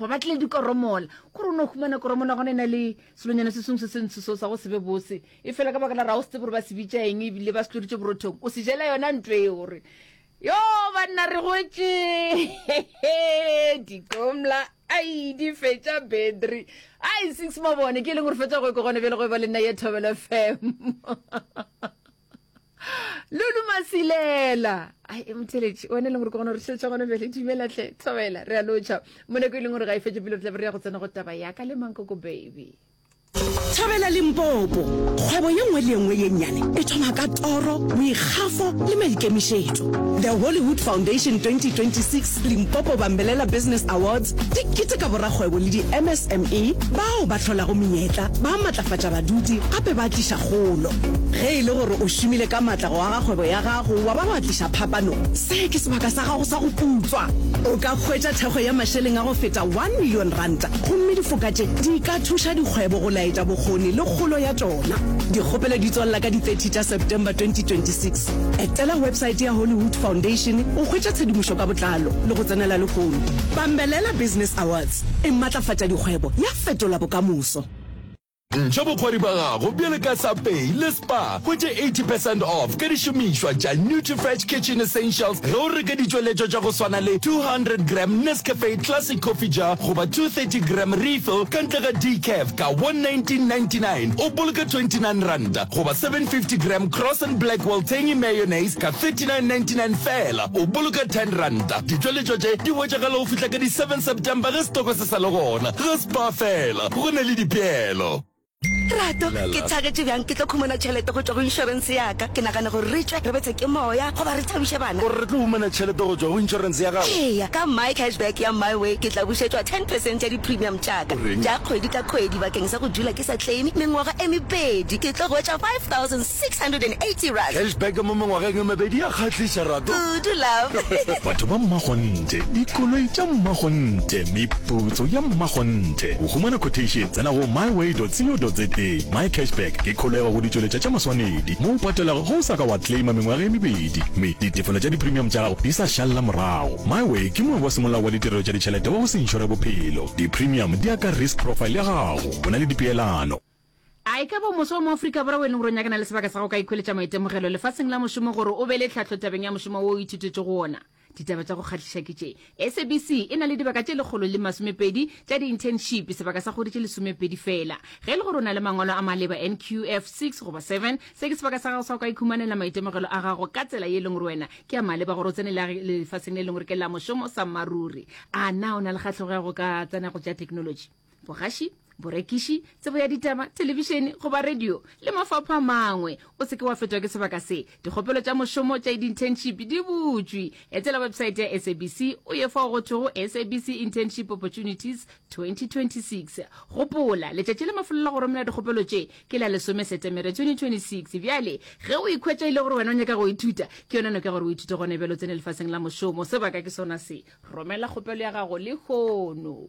go batle dikoromola gore o ne o humana koromona gona e na le selonyana se sengwe se se ntsho seo sa go sebe bose e fela ka baka la ra o setse gore ba se bitša eng ebile ba se tloditše borothong o se jela yona ntlo e gore yo banna re gotše dikomla ai di fetša battery ai six mabone ke e leng gore fetsa go e kogone bjale go e ba le nna ye thobelo fm lulu masilela ai e motheletše one e leng gore ke gona re šetša gone bele dumelatlhe tlhobela re a lotšha moneko e leng gore ga e fetše pele re tlabe re ya go tsena go taba yaka le mankoko baby thabela limpopo kgwebo ye nngwe le nngwe ye nnyane e thoma ka toro boikgafo le maikemišetšo the hollywood foundation 2026 Limpopo Bambelela Business Awards di keteka borakgwebo le di-MSME bao ba hlolago menyetla, ba matlafatša baduti gape ba tliša kgolo. Ge e le gore o šomile ka matla go aga kgwebo ya gago wa ba wa tliša phapano, se ke sebaka sa gago sa go putswa. O ka hwetša thekgo ya mašeleng a go feta one million ranta gomme difoka tše di ka thuša dikgwebo go laetša bokgoni le kgolo ya tšona. Dikgopelo di tswalela ka di thirty tša September twenty twenty six. Hollywood. Etela websaete ya Hollywood Foundation go hwetša tshedimošo ka botlalo le go tsenela lehono. Bambelela Business Awards e matlafatša dikgwebo ya fetola bokamoso. Ntšha bokgwari bja gago bjale ka Subway le Spar. Hwetše 80 percent off ka dišomišwa tša Nutrifresh Kitchen Essentials ge o reka ditšweletšwa tša go swana le 200 gram Nescafe Classic Coffee Jar goba 230 gram Refill ka ntle ga Decaf ka 119.99 o boloka 29 ranta. Goba 750 gram Cross and Blackwell Tangy Mayonnaise ka 39.99 feela, o boloka 10 ranta. Ditšweletšo tše di hwetšagala go fihla ka di 7 September ge setoko se sa le gona. Ge Spar feela, go na le dipeelo. Rato, ke thagetše bjang ke tlo khumana tšhelete go tšwa go inšorense ya-ka. Ke nagana gore re tšwe re betswe ke moya goba re thabiše bana. O re re tlo humana tšhelete go tšwa go inšorense ya gago? Eya, ka My Cashback ya MyWay ke tla bušetšwa ten percent ya di-premium tša-ka tša kgwedi ka kgwedi bakeng sa go dula ke. ke sa claime mengwaga e mebedi ke tlo hwetša 5680 rand. Cashback mo mengwageng e mebedi ya kgahliša Rato. Kudu love. Batho ba mmakgonthe, dikoloi tša mmakgonthe, meputso ya mmakgonthe. Go humana quotation tsena go myway.co.za. MyCashback ke kholego go ditšweletša tša maswanedi mo o patelago ge o sa ka wa claima mengwaga e mebedi mme ditefelo tša dipremium tša gago di sa šalela morago. Myway ke moabi wa semolao wa ditirelo tša ditšhelete wa go se inšore bophelo. Dipremium di ya ka risk profile ya gago. Go na le dipeelano. A e ka ba o moswa wa mo Afrika Borwa o e leng gore o nyakana le sebaka sa go ka ikhweletša maitemogelo lefaseng la mošomo gore o be le tlhahlo tabeng ya mošomo wo o ithutetšego wona? Ditaba tša go kgahliša ke tše. SABC e na le dibaka tše lekgolo le masomepedi tša di-internship, sebaka sa kgwedi tše lesomepedi feela. Ge e le gore o na le mangwalo a maleba, NQF six goba seven, se ke sebaka sa gago sa go ka ikhumanela maitemogelo a gago ka tsela ye e leng gore wena ke a maleba gore o tsene lefaseng le e leng gore ke la mošomo. Sammaruri, A na o na le kgahlego ya go ka tsena go tša theknolotši? bogaši borekiši tsebo ya ditaba telebišene goba radio le mafapha a mangwe o seke wa fetwa ke sebaka se dikgopelo tša mošomo tša di-internship di butšwe etela websaete ya sabc o ye fao go thwego sabc internship opportunities 2026 gopola letšatši le mafelelo go romela dikgopelo tše ke la lesome setemere 2026 bjale ge o ikhwetša ile gore wena o nyaka go ithuta ke yona noka gore o ithute gone bjalo tsene lefaseng la mošomo sebaka ke sona se romela kgopelo ya gago le kgono